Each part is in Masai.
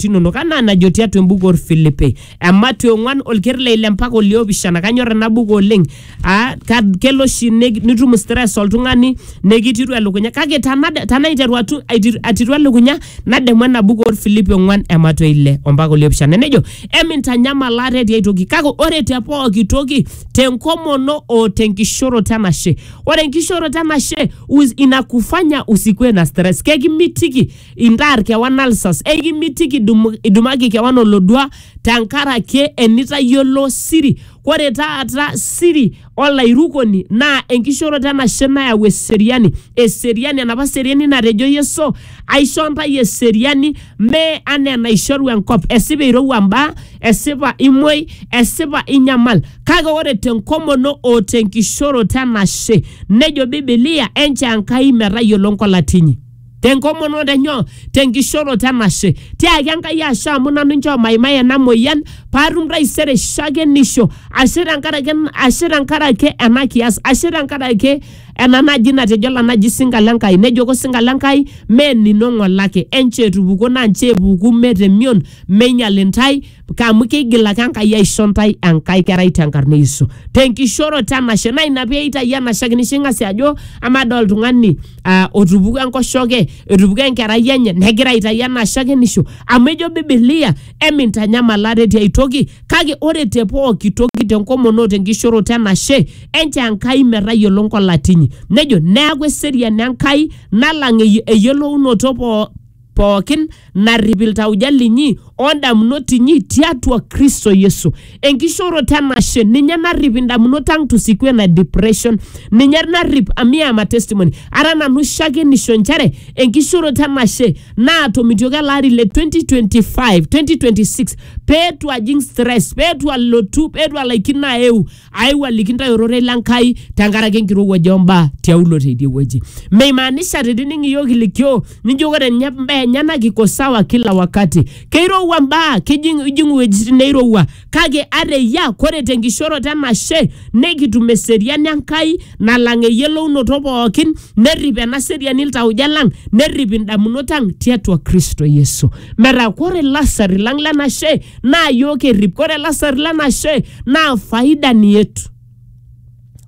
impaat inonok anaa enajo tiatua embuku orfilipi ematu ong'uan olker le ile mpaka oliopishana kanyor ena buku oleng aa ka- kelo oshi ne- nitum stress oltung'ani nekitiru elukunya kake tanade- tanaiteru atu- aitiru- atiru elukunya nademu ena buku orfilipi ong'uan ematu ile ompaka oliopishana nejo emintanyamal ate tiai toki kake ore te pooki toki tenkomono o tenkishoroto enashe ore enkishoroto enashe us- inakufanya usikue na stress kekimitiki Intaar kewan alsas, ekimitiki idum, idumaki kewan olodua tenkaraki enitayiolo siri. Ore taata siri olairukoni naa enkishooroto enashe nayau eseriani. Eseriani, enapa seriani natejo Yesu, aisho ntae eseriani mee anaa enaishoru enkop. Esipa eirowua mbaa, esipa imuoi, esipa inyamal. Kake ore tenkomono o tenkishooroto enashe, nejo Bibilia, enchoo Enkai metayiolo nkolati inyi. tenkomonoto enyoo tenkishoroto enashe tiaki enkai ashe amu nanu nchoo maimai ena moyian paatum taisere shakenisho ashe tenkaraki en- ashe tenkaraki ena kiyas ashe tenkaraki ena naji natejo ena naji sinka le Nkai nejoko osinka le Nkai mee enino ng'ole ake enchoo etupukuo naa nchoo epuku mee temion meinyial intae amu keigil ake Enkai aisho ntae enkae kerai tenkarna e Yesu tenkishooroto enashe naa ina pee eitayu enashe ake nisho ing'asie ajo amaa doi oltung'ani ah, otupukuo enkoshoke etupukuo enkerai enye negira aitayu enashe ake nisho amu ejo bibilia emintanyamal ate tiai toki kake ore te pooki toki tenkomono o tenkishooroto enashe enchoo Enkai metayiolo nkolati inyi nejo neeku eseriani Enkai nalang ey- eyiolounoto poo pookin narrip iltauja linyi o ndamunot inyi tiatua Kristo Yesu. Enkishooroto enashe ninye narrip indamunot ang tusikue na depression ninye narrip amu iyama testimony ara nanu shakenisho inchere enkishooroto enashe naatomitioki ele ari le 2025 2026 peetu ajing stress peetu alotu peetu alaikino aeu aiwaliki ntae ororei le Nkai tenkaraki enkirowuaj ombaa tiaulo teidie wueji. Meimaanisha tenining iyiook ilikioo nijo ore ninye mbaa enyena kiko sawa kila wakati. Keirowua mbaa, kijing ijing iwuejitin neirowua kake ata eyia kore tenkishoroto enashe nikitum eseriani Enkai nalang eyiolounoto pookin nerrip ena seriani iltauja lang nerrip indamunot ang tiatua Kristo Yesu. Metaa kore ilasarri lang lenashe naa yiok errip. Ore lasar le nashe naa faida ni yetu.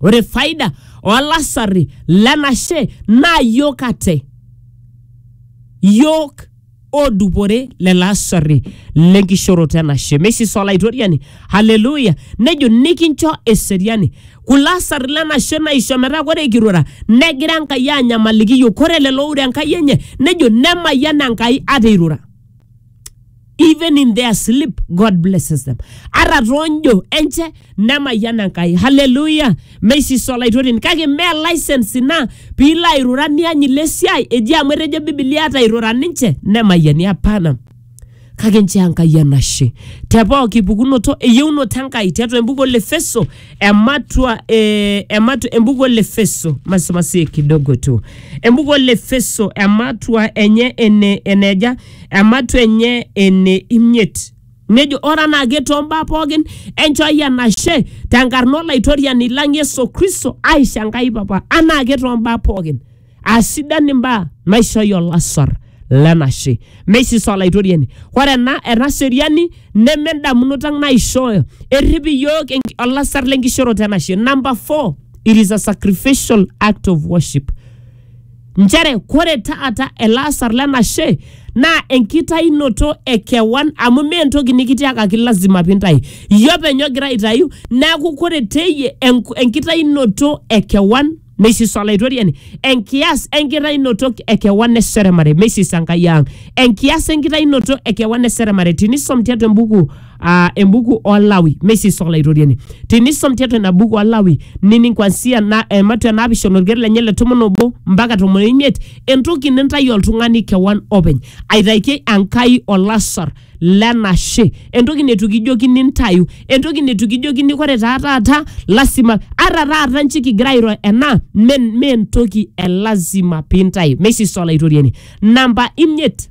Ore faida olasarri le nashe naa yiok ate. Yiok oodupore lelo asarri le nkishooroto e nashe. Meisisa Olaitoriani, haleluya, nejo nikincho eseriani. Kulo asarri le nashe naisho metaa ore kirura negira Enkai aanyamaliki yiok. Ore lelo oure Enkai enye nejo nemayian Enkai ata eirura. even in their sleep god blesses them ara tonjo enche nemayiana nkai haleluya meisiso olaitoreni kake me license ina piilo airura niany ile siai eji amu etejo bibilia atairura ninche nemayiani apana kake nchoo enkai enashe te pooki pukunoto eyieunoto enkai tiatua embuku olefeso ematua eh, ematu, embuku olefeso masimasie kidogo tu embuku olefeso ematua enye ene eneja ematua enye ene imiet. Nejo ore anaake too mbaa pookin enchooki enashe tenkarna Olaitoriani lang Yesu Kristo aisho Enkai Papa anaake too mbaa pookin. Aasidan imbaa naishooyo olasar lenashe. Meisis Olaitoriani. Ore ena ena seriani neme endamunoto ang naishooyo. Errip iyiook enk- olasar lenkishooroto enashe. Number four, it is a sacrificial act of worship. nchere kore taata ele asar lenashe naa enkitainoto e kewan amu mee entoki nikitiakaki lazima pintayu iyie openy ogira aitayu neeku kore teyie enk- enkitainoto e kewan meisisa olaitoriani enkias enkitainoto e kewan eseremare meisisa enkai ang enkias enkitainoto e kewan eseremare tinisom tiatua embuku uh, embuku olawi meisii soxla itoriani tinisom tiatua ina buku olawi nining kwansia na, eh, matua naapishana olker lenye le tomon obo mpaka tomon oimiet entoki nintayu oltung'ani kewan openy aitaikie enkai olasar lenashe entoki netu kijoki nintayu entoki netu kijokini kore taa taata lasima ara taata nchi kigira airo ena me me entoki e lazima pintayu meisii soxla itoriani namba imiet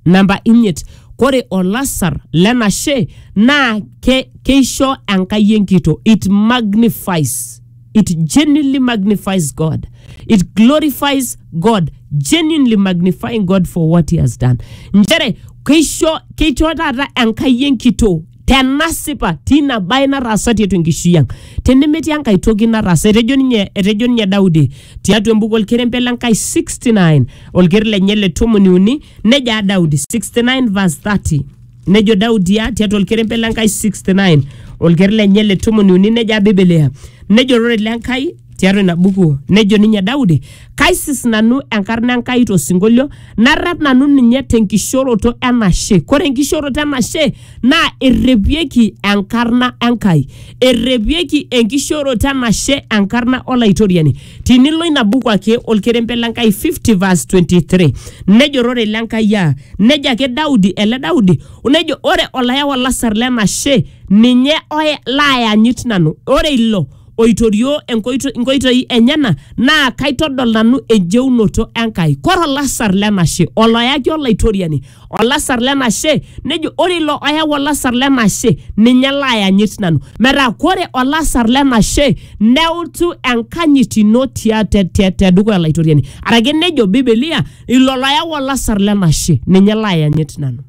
namba imiet kore olasar lenashe naa ke, keisho enkai enkito it magnifies it genuinely magnifies god it glorifies god genuinely magnifying god for what he has done nchere keisho keisho taata enkai enkito tenasipa tina bae nataasa tiatua enkishui ang tenemetii enkae toki nataasa etejo ninye etejo ninye Daudi tiatua embuku olkerembe le Nkai 69 olker lenye le tomoni uni nejo aa Daudi 69 verse 30 nejo Daudi aa tiatua olkerembe le Nkai 69 olker lenye le tomoni uni nejo aa Biblia nejo ororei le Nkai tiatua ina buku nejo ninye Daudi, kaisis nanu enkarna Enkai tosinkolio, narrep nanu ninye tenkishoroto enashe. Kore enkishoroto enashe naa errepieki enkarna Enkai, errepieki enkishoroto enashe enkarna Olaitoriani. Tinilo ina buku ake olkerembe le Nkai 50 verse 23 nejo ororei le Nkai aa nejo ake Daudi ele Daudi nejo ore olayau olasar lenashe ninye oya laayanyit nanu, ore ilo oitorioo enkoito- inkoitoi enyena naa kaitodol nanu enjeunoto Enkai. Kore olasar lenashe oloyaki olaitoriani olasar lenashe nejo ore ilo oyau olasar lenashe ninye laayanyit nanu. Metaa kore olasar lenashe neutu enkanyit ino tia te te tedukuya olaitoriani. Arake nejo bibilia ilo loyau olasar lenashe ninye laayanyit nanu.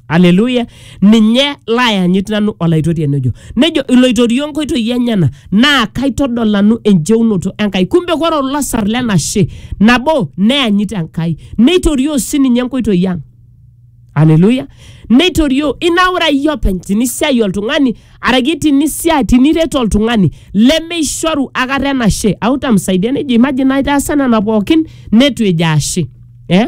aleluya ninye laayanyit nanu olaitoriani ojo nejo iloitorio nkoitoi enyena naa kaitodol nanu enjeunoto enkai kumbe kore olasar lenashe nabo neyanyit enkai neitorioo sininye nkoitoi ang aleluya neitorioo inaura iyie openy tinisiai oltung'ani araki tinisia tiniret oltung'ani lemeishoru akata enashe autamsaidia nejo imagine naitaasa nena pookin netu ejo ashe eh?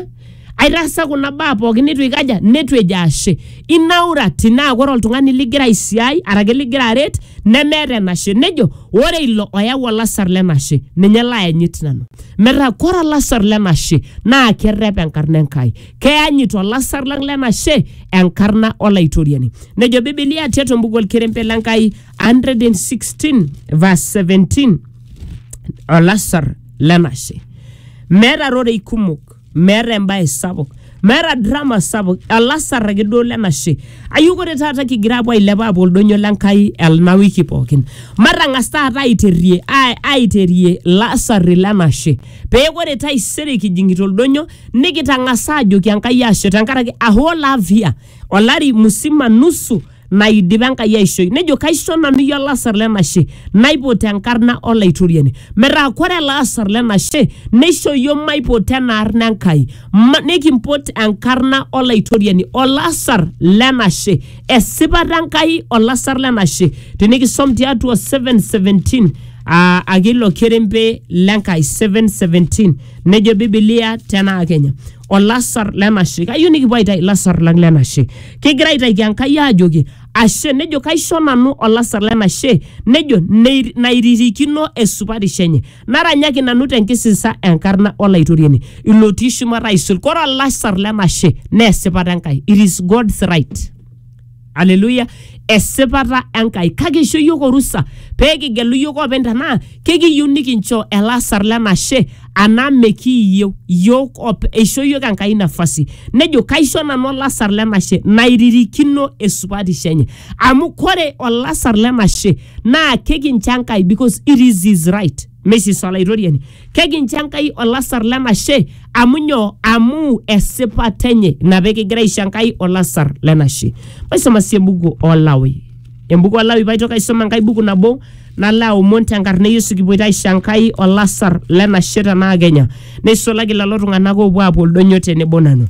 aitaasa kuna baa pookin neitu ikaja neitu ejo ashe inaurati naa ore oltung'ani ligira aisiai arake ligira aret nemeeta enashe nejo ore ilo oyau olasar lenashe ninye laayanyit nanu metaa kore olasar lenashe naa kerrep enkarna enkai keyanyit olasar lang lenashe enkarna olaitoriani nejo bibilia tiatua embuku olkerempe lenkai 116 verse 17 olasar lenashe meeta rorei kumok meeta embae sapuk meeta drama sapuk olasar ake duo lenashe ayieu ore taata kigira apuo ailepa apuo oldonyo lenkai ena wiki pookin matang'as taata aiterie ai- aiterie lasarri lenashe pee ore taisere kijing'ita oldonyo nikitang'asa ajoki enkai ashe tenkaraki a whole half year olari musima nusu naidipa Enkai aishoi. Nejo kaisho nanu iyie olasar lenashe naipot enkarna Olaitoriani. Metaa kore ele asar lenashe neisho iyiook maipot ena arna Enkai. Ma, nikimpot enkarna Olaitoriani, olasar lenashe. Esipata Enkai olasar lenashe. Tinikisom tiatua 717 aa ake ilo kerempe l'Enkai 717 nejo Biblia tenaa Kenya olasar lenashe. Kayieu nikipuo aitayu ilasar lang lenashe. kegira aitaiki Enkai aajoki ashe, nejo kaisho nanu olasar lenashe, nejo "Nei- nairirikino esupatisho enye, naranyaki nanu tenkisisa enkarna Olaitoriani, ilotii shumata aisul. Kore olasar lenashe naa esipata Enkai, it is God's right. Hallelujah. Esipata Enkai. Kake eisho iyiook orusa pee kigelu iyiook oopeny tenaa kekiyieu nikinchoo elasar lenashe anaa mekiiyieu yiok op eisho yiok enkai nafasi nejo kaisho nanu olasar lenashe nairirikino esupatisho enye amu kore olasar lenashe naa kekincho enkai because it is his right mesis olaitoriani kekincho enkai olasar lenashe amu nyoo amu esipata enye ina pekigira aisho enkai olasar lenashe maisoma sii ebuku olawi Embuku Olawi paitoki aisoma enkae buku nabo nalo aomon tenkarna e Yesu kipuoita aisho Enkai olasar lenashe tenaa Kenya neisulaki lelo tung'anak oopuo aapuo oldonyo tenebo nanu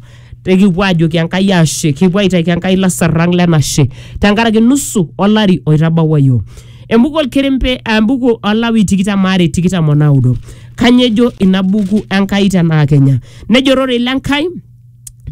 nikipuo aajoki Enkai ashe kipuo aitaki Enkai lasar lang lenashe tenkaraki nusu olari oitabawua iyiook. Embuku olkerempe embuku Olawi tikitam aare tikitam onaudo. Kanyoo ejo ina buku Enkai tenaa Kenya? Nejo ororei le Nkai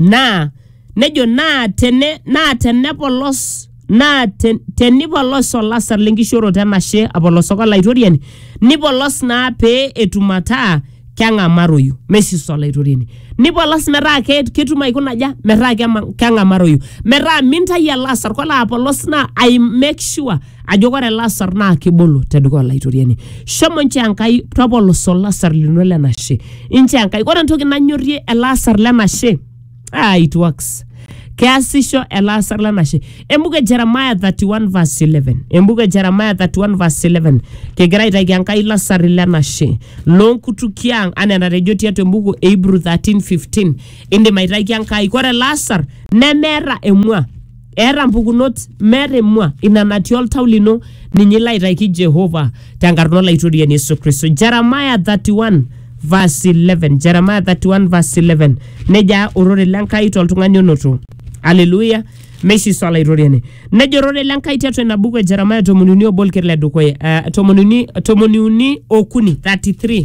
naa nejo naa tene naa tenepolos naa te, tenipolos olasar lenkishooroto enashe apolosoko olaitoriani nipolos naa pee etum ataa keng'amaroyu meisisa olaitoriani nipolos metaa ke- ketum aikuna aja metaa kema- keng'amaroyu metaa mintai ele asar kolo apolos naa ai make sure ajo kore ele asar naa kibolo tedukuya olaitoriani shomo nchoo enkai topolosa olasar lino lenashe inchoo enkai ore entoki nanyorrie ele asar lenashe ah, it works keasisho elaasar lanashe embuku e jeremiah 31 verse 11 embuku e jeremiah 31 verse 11 kigira aitaki enkai lasari lenashe loonkutukie ang anaa enatejo tiatua embuku e hebrew 13 15 indim aitaki enkai kore lasar nemeeta emua eeta mpukunot meeta emua ina natii oltau lino ninye ilo aitaiki jehova tenkarna olaitoriani yesu kristo jeremaya 31 verse 11 jeremaya 31 verse 11 nejaa orore lenkai toltung'ani onoto aleluya meishiso olaitoriani nejo orore lenkai tiatua ina buku e jeremaya tomoniuni obo olker le dukuya uh, tomoniuni tomoniuni okuni 33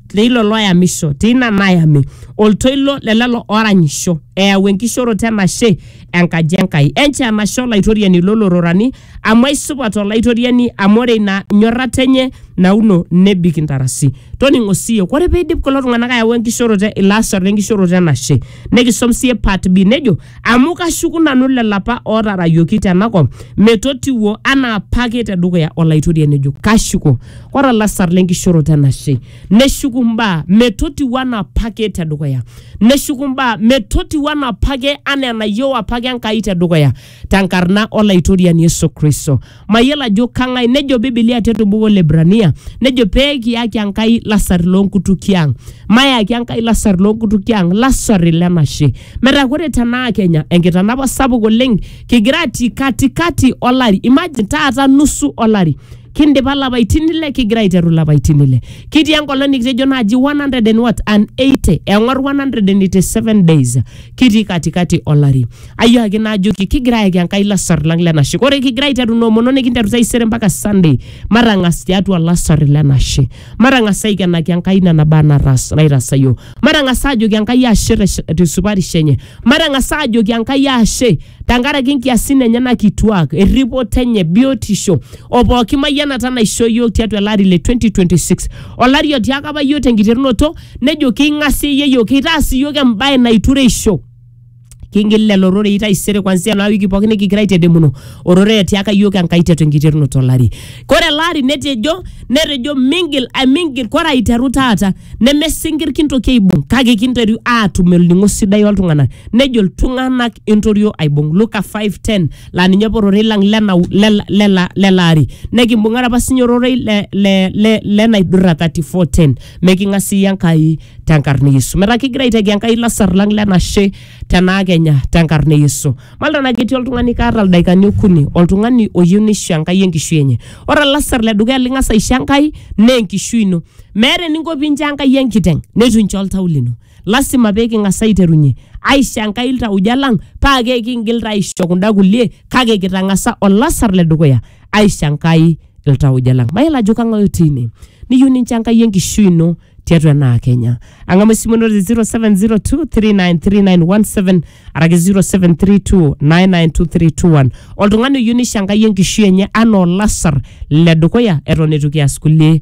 leilo loyamisho teina nayami oltoilo le lelo oranyisho eyau enkishoroto enashe enkaji enkai enche enashe olaitoriani lolororani amu aisupat olaitoriani amu ore ina nyorrata enye nauno nebik intarasi toning'o siiyie ore peidip kulo tung'anak ayau enkishoroto e- ilo asar lenkishoroto enashe nikisom siiyie part b nejo amu kashuku nanu lelo apa otarayioki tenakop metotiwuo anaa apake tedukuya olaitoriani ejo kashuko Ore olasar le nkishoroto enashe, neshuku mbaa metotiu anaa apake te dukuya, neshuku mbaa metotiu anaa apake anaa enayieu apake Enkai te dukuya te nkarna o Laitoriani Yesu Kristo. Mayiolo ajo kang'ai, nejo Bibilia te to buku o Lhebrania, nejo pee kiyaki Enkai lasar loo nkutukie ang'. Mayaki Enkai lasar loo nkutukie ang', lasar le nashe. Metaa ore te naa Kenya, enkitanapa sapuk oleng kigira atii katikati olari, imagine taata nusu olari. kindipa lapaitin ile kigira aiteru lapaitin ile kitii enkolong nikitejo naaji 100 and what and 80 eng'or 187 days kitii katikati olari ayiaki naajoki kigira ayaki enkai lasar lang lenashe ore kigira aiteru noomono nikinteru taisere mpaka sunday matang'as tiatua lasar lenashe matang'as aikenaki enkai nena baa natas- naitasayo matang'as aajoki enkai ashe te- tesupatisho enye Matang'asa aajoki Enkai ashe tenkaraki nkiasin enyena kituak, erripoto enye, biotisho o pooki mayianata naishoo iyiook tiatua ele ari le 2026. Olari otiaka apa iyiook tenkiterunoto nejo king'aseyie iyiook, kitaas iyiook embae naitureisho. Kingil lelo rorei taisere kwanzia ena wiki pooki nikigira aitedemunu ororei otiaka iyiook Enkai tiatua enkiterunoto olari. Kore ele ari netejo netejo mingil ai mingil kore aiteru taata nemesinkir kintoki aibung kake kinteru aatum olning'o sidai oltung'anak nejo iltung'anak entorio aibung Luka 5:10 laa ninye apa ororei lang lena, lena, lena, lele ari nekimbung'are apa sinye ororei le, le, le, lenaidurra 34:10 meking'asieyie Enkai tenkarna e Yesu metaa kigira aitaki Enkai lasar lang lenashe tenaa kenya tenkarna e Yesu malta naa ketii oltung'ani kaata ildaikani okuni oltung'ani oyieu nisho Enkai enkishui enye ore olasar ledukuya ling'as aisho Enkai naa enkishui ino meeta eninko pincho enkai enkiteng neitu incho oltau lino lasima pee king'as aiterunye aisho enkai iltauja lang paa ke kingil taa aisho kunda kulie kake kitang'asa olasar le dukuya aisho enkai iltauja lang mayiolo ajo kang'ae otii ine niyieu nincho enkai enkishui ino tiatua enaa kenya ang'amu esimu ino te 0702393917 araki 0732992321 oltung'ani oyieu nisho enkai enkishui enye anaa olasar le dukuya eton eitu kias kulie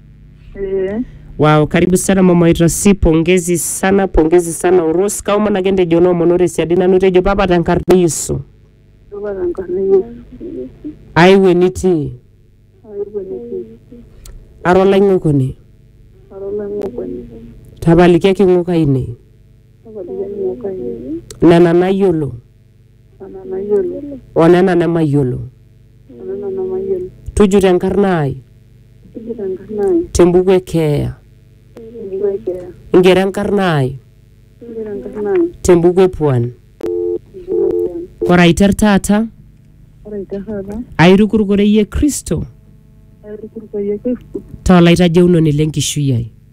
Eh, Wow, karibu sana mama Itasi, pongezi sana, pongezi sana Uros. Kau mana kende jono monore siadi nanu tejo papa tankarna Yesu. Baba tenkarna Yesu. Aiwe nitii, Aiwe nitii. ara olaing'okoni, Ara olang'okwani. tapalikiaki ng'ok ainei, Tapalikiaki ng'ok ainei. nena nayiolo, o nena nemayiolo tujuto enkarna ai tembuku e keeya ingero enkarna ai tembuku e puan ore aiter taata airukuruk oreyie kristo taa olaitajeunoni lenkishui ai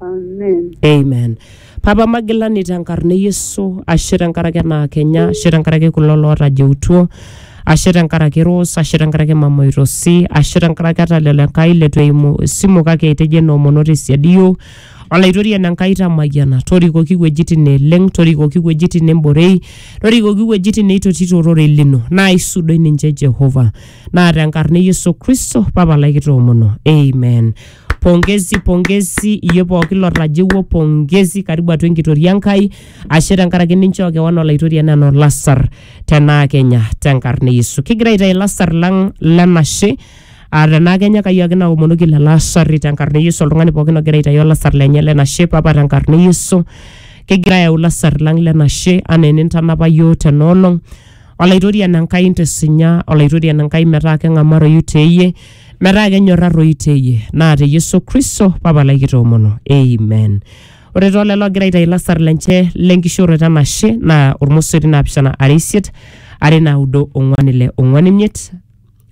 Amen. amen papa magilani tenkarna e yesu ashe tenkaraki ena kenya ashe tenkaraki kulo lootajeutuo ashe tenkaraki ros ashe tenkaraki mama oitosi ashe tenkaraki ata lelo enkai letu eimu esimu kake etejo enoomono tesiadi iyiok olaitoriani enkai tamayiana torikoki iwuejitin neeleng torikoki iwuejitin nemborei torikoki iwuejitin neitotito ororei lino naa isudoi ninche jehova naa tenkarna e yesu kristo papa lai kitoomono amen pongezi pongezi iyie pooki lotajeuo pongezi karibu atua enkitoria enkai ashe tenkaraki ninchoo kewan olaitoriani anaa olasar tenaa kenya tenkarna e yesu kigira aitayu ilasar lang lenashe aa tenaa kenya kai ake naomonoki lelo asarri tenkarna e yesu oltung'ani pookin ogira aitayu olasar lenye lenashe papa tenkarna e yesu kigira ayau ilasar lang lenashe anaa enintanapa yioo tenoolong Olaitorian Enkai intisinya, Olaitorian Enkai metaa keng'amaroyu teeyie, metaa kenyorraroyu teeyie, naa te Yesu Kristo Papa lai kitoomono. Amen. Ore too lelo ogira aitayu lasar lenche lenkishooroto enashe naa ormosori naapishana are isiet, are naudo ong'uan ile ong'uan imiet,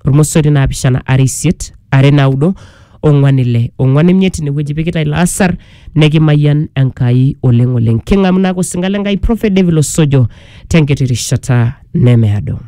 ormosori naapishana are isiet are naudo ong'wan ile ong'wan imiet inewueji pikita ilo asar nekimayian enkai oleng oleng king'amu naake osinka le nkai prophet david osojo tenkiti rishata nemeado